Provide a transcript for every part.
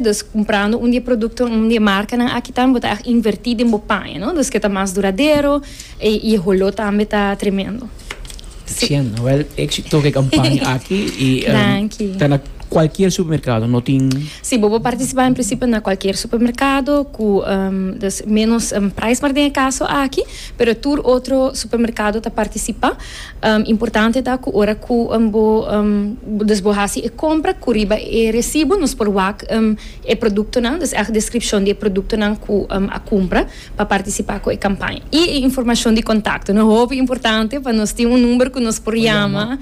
Dus kumprando un di e produktonan, un di e markanan aki tambe bo ta a invertí den bo paña, no? Dus ke ta mas duradero i e holó tambe ta tremendo. Si. Cien. Wèl, éksito ku e kampaña aki i Danki. ta na kualkier supermerkado, no tin. Si, bo por partisipá en prinsipio na kualkier supermerkado ku dus ménos prijs, mar den e kaso aki, pero tur otro supermerkado ta partisipá. Importante ta cu ora cu bo dus bo haci e compra cu riba e recibo nos por wak e productonan, dus echt descripcion di e productonan cu a cumpra pa participa cu e campaña. Y e informacion di contacto no hopi importante pa nos tin un number cu nos por yama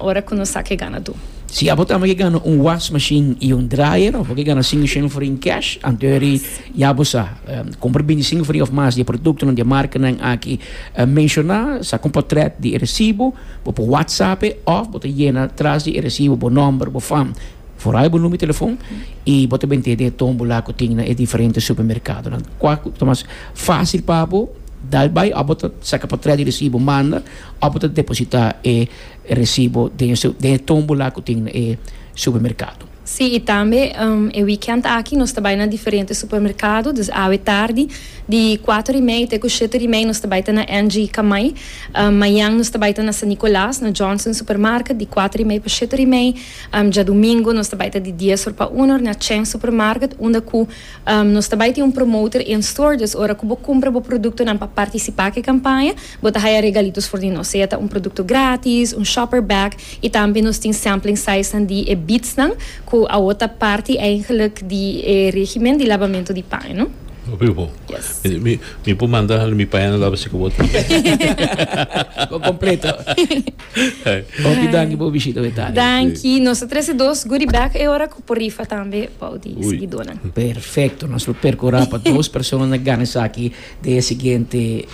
ora cu nos sa cu e ganadur. Si abo tambe ke gana un was machine y un dryer of bo ke gana cinco shen for in cash anto e ri. I abo sa kumpra bintisingu faria òf mas di e produktonan di e markanan aki menshoná, saka un potret di e resibo, bo por whatsapp'e òf bo ta yena tras di e resibo bo nòmber, bo fam, foral bo numero di telefòn i bo ta bin tende e tómbola ku tin na e diferente supermerkadonan. Kua ku ta mas fásil pa bo? Dal bai òf bo ta saka potret di resibo manda òf bo ta depositá e resibo den e den e tómbola ku tin na e supermerkado. Sí, i tambe e weekend aki nos ta bai na diferente supermerkado, dus awe tardi, di kuater di mei te ku shete di mei nos ta bai ta na NG Kamai. Mañan nos ta bai ta na San Nicolaas, na Johnson Supermarket, di kuater di mei pa shete di mei. Djadumingo nos ta bai ta di dies or pa una or na Chen Supermarket, unda ku nos ta bai tin un promoter in-store, dus ora ku bo kumpra bo produktonan pa partisipá ku e kampaña, Bo ta haya regalitos for di nos, sea ta un produkto gratis, un shopper bag i tambe nos tin sampling sizenan di e beadsnan ku awor ta parti eigenlik di e regimen di labamento di paño. Papi bo. Yes. Mi mi por manda hal mi paño laba si ku bo tin. Bo kompleto. Papi danki por bishita bo e tarea. Danki. Nos ta trese dos goodie bag e ora ku por rifa tambe bou di Ui. sigidónan. Perfekto. Nos lo perkurá pa dos persona na gana esaki den e siguiente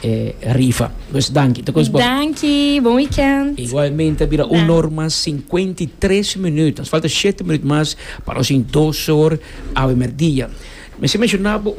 rifa. Pues danki, ta kos bon. Danki, bon weekend. Igualmente a bira un or mas sinkuenta i tres minuut. Nos falta shete minuut mas pa nos tin dos or awe merdia. Mi a menshoná bo,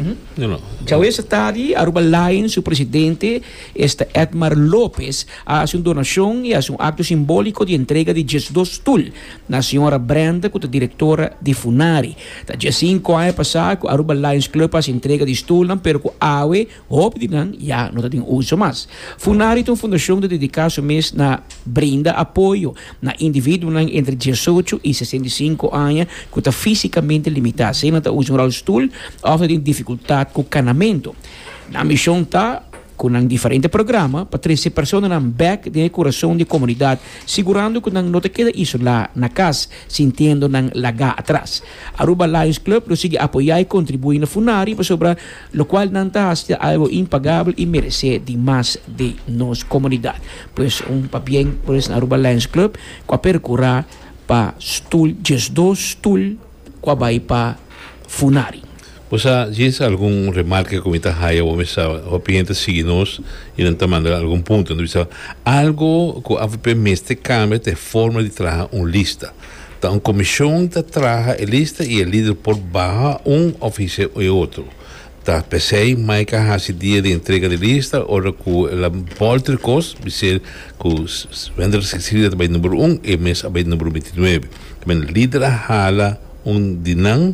djawe sa tardi Aruba Lions su presidente esta Edmar Lopez a hasi un donashon i hasi un akto simbóliko di entrega di diesdos stul na señora Brenda ku ta direktora di Funari. Ta dje sinku aña pasá ku Aruba Lions Club hasi entrega di stulnan pero ku awe hopi di nan ya no ta den uso mas. Funari ta un fundashon di dediká su mes na brinda apoyo na individuonan entre diesocho i sesenta i sinku aña ku ta físikamente limitá, sea nan ta usa un rolstoel òf ta den difikultat ku kanamentu. Nan mishon ta. cu nan diferente programa pa trece personanan bek den e curason di e comunidad, sigurando cu nan no ta keda isola na cas, sintiendo nan laga atras. Aruba Lions Club lo sigui apoya y contribui na funari pasobra locual nan ta haci ta algo impagabel y merece di mas di nos comunidad. Pues un pabien pues na Aruba Lions Club cu a percura pa stoel diesdos stoel cu a bay pa funari. Bo sa djis algun remarka ku mi ta haya awor mi sa hopi hende ta sigui nos i nan ta manda algun punto nan ta bisa algo ku avp mester kambia ta e forma di traha un lista ta un komishon ta traha e lista i e lider por baha un òf hise e otro ta p'esei mai ka hasi dia di entrega di lista ora ku la bòlter kos bis'e ku Wendell Cecilia ta bai numero un e mes a bai numero binti nuebe ta bin lider a hala un di nan.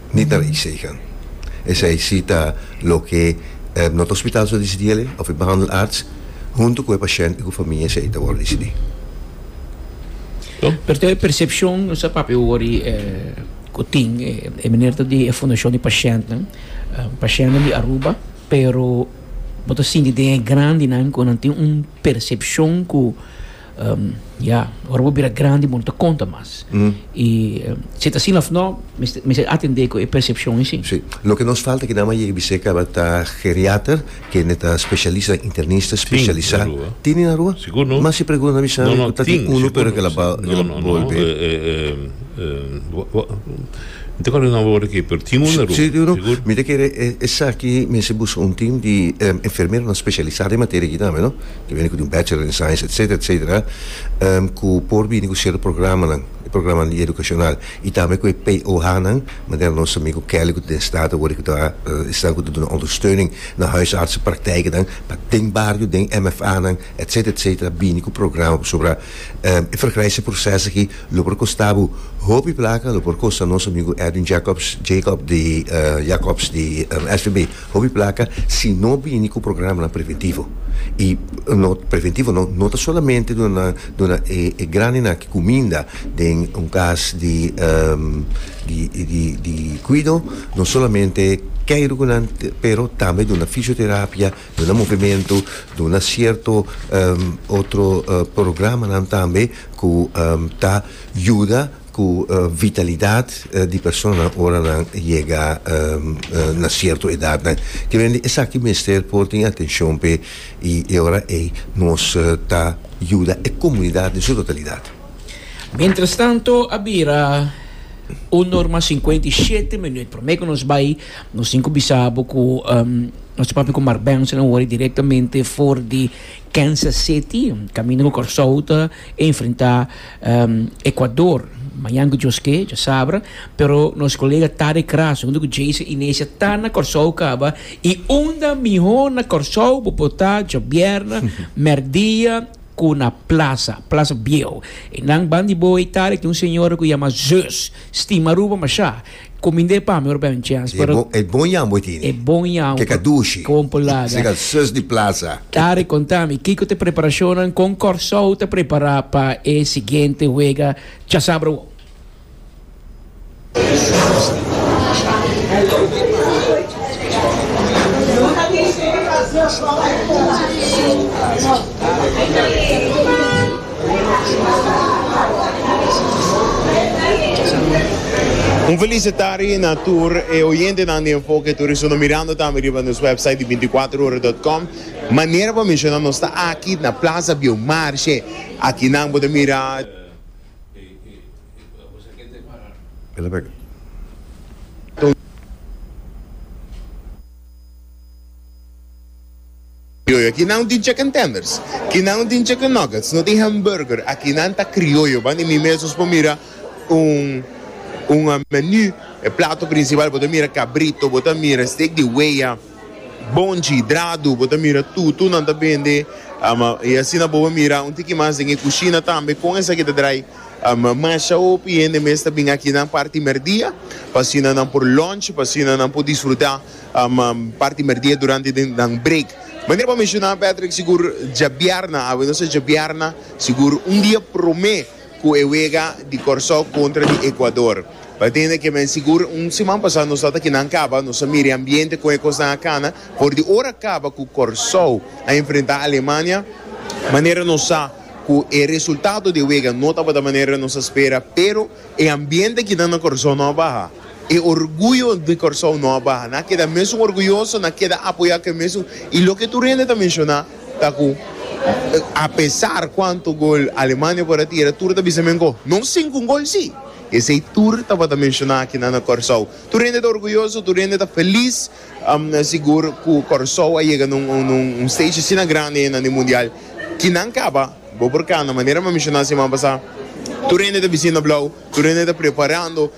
Ni ta rei Sagan. Esei si ta loke not a hospital su a disidí ale, of e behandelarts huntu ku e pashènt i ku famia esei ta wòrdu disidí. Pero ta e persepshon nos a papia wòrdu ku tin, e meneer ta di e fundashon di pashèntnan, pashèntnan di Aruba, pero bo ta sinti den e grandinan ku nan tin un persepshon ku. Ya, ora bo bira grandi bo no ta konta mas. I si ta asin of no, mester atendé ku e persepshon esei. Sí. Loke nos falta kinan m'a yega bis'é kaba ta geriater, kende ta spesialis nan, internista spesialisá. Tin na Rua. Tin na Rua? Sigur no. Mas si pregu na bisa mi ku ta tin unu pero ke el a bolbe. Mi ta akorda di nomber ora aki, pero tin unu na Rua. Sí, tin unu. Sigur. Mi ta kere esaki mester buska un tim di enfermeronan spesialisá den materia aki tambe no. Ta bini cu tin Bachelor in Science etc. Etc. Cu por bini cu cierto programanan, e programanan di educacional y tambe cu e POHnan, manera nos amigo Kelly cu ta den Staten awor y cu ta esnan cu ta duna ondersteuning na huisartsenpraktijkenan pa den bario, den MFAnan etc. Etc. Bini cu programa pasobra e vergrijkse proces aki lo por costa bo hopi placa, lo por costa nos amigo Edwin Jacobs, Jacob, di Jacobs di SVB. Hopi placa si no bini cu programanan preventivo y no preventivo no no ta solamente duna nan duna e e grandenan ki cuminda den un cas di di di di cuido no solamente key rucu nan pero tambe duna fisioterapia duna movemento duna cierto otro programanan tambe cu ta yuda Cu vitalidad di persona ora nan yega na cierto edadnan. Kibendi esaki mester por tin atencion p'e y e ora ey nos ta yuda e comunidad den su totalidad. Mientrastanto a bira un norma cincuenta y shete minuut. Prome cu nos bay nos tin cu bisa bo cu nos ta papia cu Mark Benson awor y directamente for di Kansas City, camino cu Corsou ta. Enfrenta Ecuador mañan cu Dios ke, dja sabra, pero nos colega Taric Razo hunto cu Jason Inesia ta na Corsou caba y unda miho na Corsou bo por ta djobièrna merdia cu na plaza, plaza bieho y nan ban di bo ey Taric tin un señora cu yama Zeus, stima Aruba masha. Cominde pa mi ora bay un chance. E bon, e bon yambo e tini. E bon yambo. Keka dushi. Keka bon pulada. Sega al sus di plaza. Tari, contami, kiko ta preparacionnan, con Corsou ta prepara pa e siguiente wega chasabra wou? Un felicitari na tur e oyentenan di Enfoke Turismo no mirando tambe riba nos website di binticuatrohora.com. Manera pa menciona nos ta aki na Plaza Biomarche aki nan bo ta mira. Criollo, aki nan no tin chicken tenders, ki nan no tin chicken nuggets, no tin hamburger, aki nan ta criollo, banda di mi mes nos por mira un un menu, e plato principal bo ta mira cabrito, bo ta mira steak di wea, bonchi, drado, bo ta mira tutu nan ta bende, ama y asina bo por mira un tiki mas den e cushina tambe con esaki ta draai, ama masha hopi hende mes ta bin aki nan parti merdia, pa asina nan por lunch, pa asina nan por disfruta. Parti merdia durante den nan break. Manera bo menshona Patrick sigur djabièrna awe nos a djabièrna sigur un dia promé ku e wega di Kòrsou kontra di Ekuador. Pa tende ke men sigur un siman pasá nos tabata kinan kaba, nos a mira e ambiente kon e kosnan a kana, for di ora kaba ku Kòrsou a enfrentá Alemania, manera nos sa ku e resultado di e wega no tabata manera nos a spera pero e ambiente kinan na Kòrsou no a baha. E orguyo di Kòrsou no a baha. Nan a keda mesun orguyoso, nan a keda apoyá ke mesun. I loke tur hende ta menshoná ta ku apesar kuantu gol Alemania por a tira, tur ta bisa men ku no sinku un gol sí. Esei tur tabata menshoná aki nan na Kòrsou. Tur hende ta orguyoso, tur hende ta felis, sigur ku Kòrsou a yega na un stage asina grandi nan di mundial. Ki nan kaba, bo por kanda, manera mi a menshoná siman pasá, tur hende ta bisin na blou, tur hende ta preparando.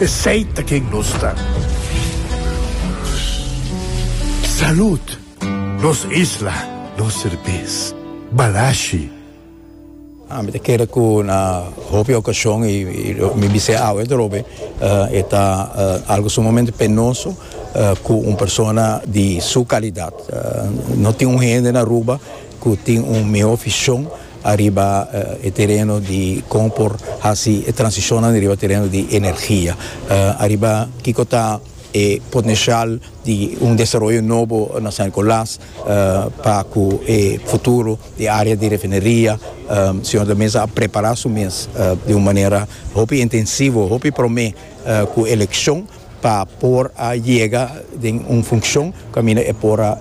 Esey ta ken nos ta. Salud! Nos isla, nos serbes. Balashi! Ah, mi ta kere ku na hopi okashon, i mi bis'e awe dorobe, e ta algu sumamente penoso ku un persona di su kalidat no tin un hende na Aruba, cu tin un mihó vision ariba e tereno di con por haci e transicionnan riba tereno di energia, ariba kico ta e potencial di un desaroyo nobo na San Nicolas pa cu e futuro di e area di refineria Señor ta mester a prepara su mes di un manera hopi intensivo, hopi prome cu eleccion. pa por a yega den un funcion caminda e por a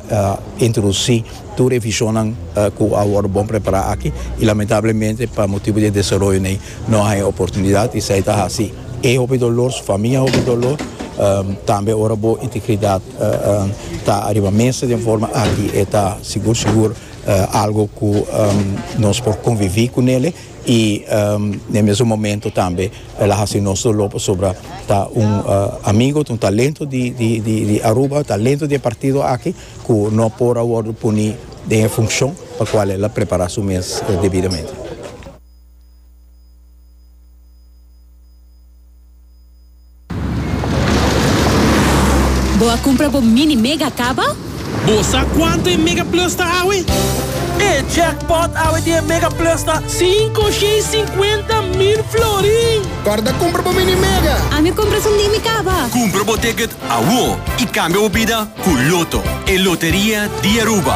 introduci tur e visionnan cu a worde bon prepara aki y lamentablemente pa motibo di e desaroyonan ey no a haya oportunidad esey ta haci e hopi dolor su famia hopi dolor tambe ora bo integridad ta ariba mesa den forma aki e ta sigur sigur algo cu nos por convivi cu nele. y n'e mesun momento tambe el a haci nos dolor pasobra ta un amigo ta un talento di Aruba talento di e partido aki cu no por a wordo poni den e funcion pa cual el a prepara su mes debidamente. Bo a cumpra bo mini mega caba? Bo sa cuanto e mega plus ta awe? E jackpot awe di e mega plus ta. Cinco shei cincuenta mil florin! Corda cumpra bo mini mega! Ami cumpra su mimi caba! Cumpra bo ticket awo y cambia bo bida cu Lotto, e loteria di Aruba!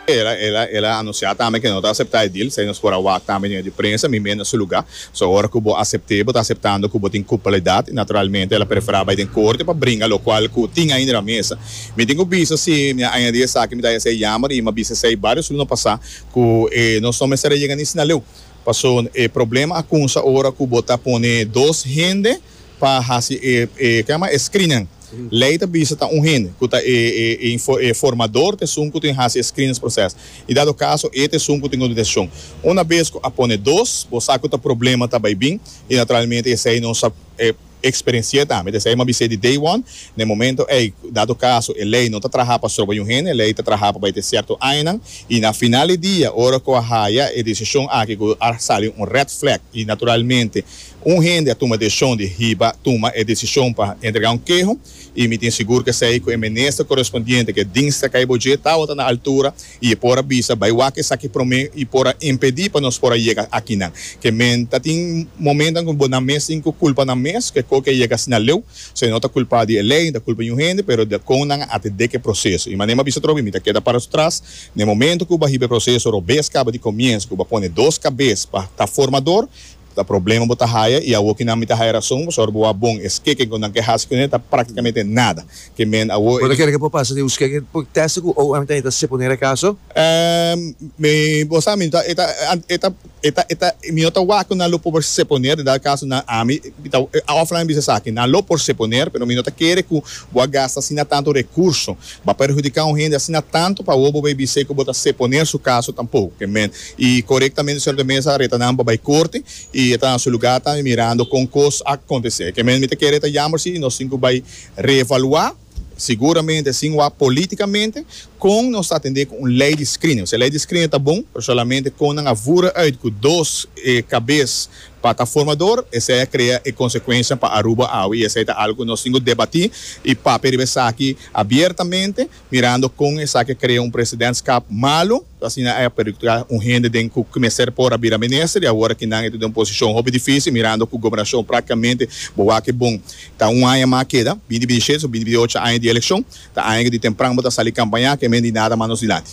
El a anunciá tambe que no ta aceptá e deal, esei nos por a wak tambe den e prensa, mi meen na su lugá. So ora cu bo acept'é, bo ta aceptando cu bo tin culpabilidad y naturalmente el a preferá bai den corte pa bringa locual cu tin ahin den na mesa. Mi tin cu bisa si mi a añadí esaki mi ta hes'é jammer y mi a bisa esei varios luna pasá cu e nos no mester a yega ni Sinaleu. Pasobra e problema a cunsa ora cu bo ta pone dos hende. pa hasi e e ke nama e screening. Lei ta bisa ta un hende ku ta e e e info e formador ta esun ku tin hasi e screenings proces i dado kaso e ta esun ku tin un desishon. Una bes ku a pone dos bo sa ku ta problema ta bai bin i naturalmente esei nos a e eksperensi'é tambe. Esei mi a bis'é di day one na e momento ei dado kaso e lei no ta traha pa stroba un hende e lei ta traha pa bai te sierto añanan i na final di dia ora ku a haya e desishon aki ku a sali un red flag i naturalmente Un hende a tuma desishon di hiba tuma e desishon pa entregá un keho i mi tin sigur ku esei ku e minister korespondiente ke Dinsdag kai bo dje tabata na altura i e por a bisa bai wak esaki promé i por a impedí pa nos por a yega akinan ke men ta tin momentan ku bo nan mes tin ku kulpa nan mes ku e ko ke a yega asina leu so e no ta kulpa di e lei ni ta kulpa di niun hende pero di kon nan a atendé ku e proseso i mané bo a bisa tropi mi ta keda para su tras na e momento ku bo a hiba e proseso robes kaba di komienso ku bo a pone dos kabes pa ta formador Ta problema bo ta haya y awo kinan mi ta haya rason boso ora bo wak bon e skeken cu nan ke haci cu nan e ta practicamente nada ke men awo e Bo ta kere ke por pasa den un skeken por testa cu ow antan e ta seponer e caso? Ehm mi bo sa mi ta e ta e ta e ta e ta mi no ta wak cu nan lo por seponer edad caso nan ami mi ta of nan a bisa esaki nan lo por seponer pero mi no ta kere cu bo a gasta asina tanto recurso ba perhudica un hende asina tanto pa awo bo bay bis'e cu bo ta seponer su caso tampoco ke men Y corectamente Señor ta mesa reta nan pa bay corte y e ta na su lugar tambe mirando con cos a acontece. Ke men mi ta kere e ta yamber si nos tin cu bay reevalua, seguramente sin wak politicamente, con nos ta atende cu un ley di screening. Osea, ley di screening ta bon, pero solamente con nan a vura uit cu dos cabes pa ta formador, esey a crea e consecuencianan pa Aruba awe y esey ta algo cu nos tin cu debati y papia riba esaki abiertamente. mirando con esaki a crea un presidentskap malu, so asina ey a perjudica un hende den cu mester por a bira minister y awor aki nan ey ta den un posicion hopi dificil mirando cu gobernacion practicamente bo wak bon. Ta un aña mas a keda, binti binti siete so binti binti ocho aña di eleccion, ta aña cu di tempran bo ta sali campaña, kemende y nada mas nos dilanti.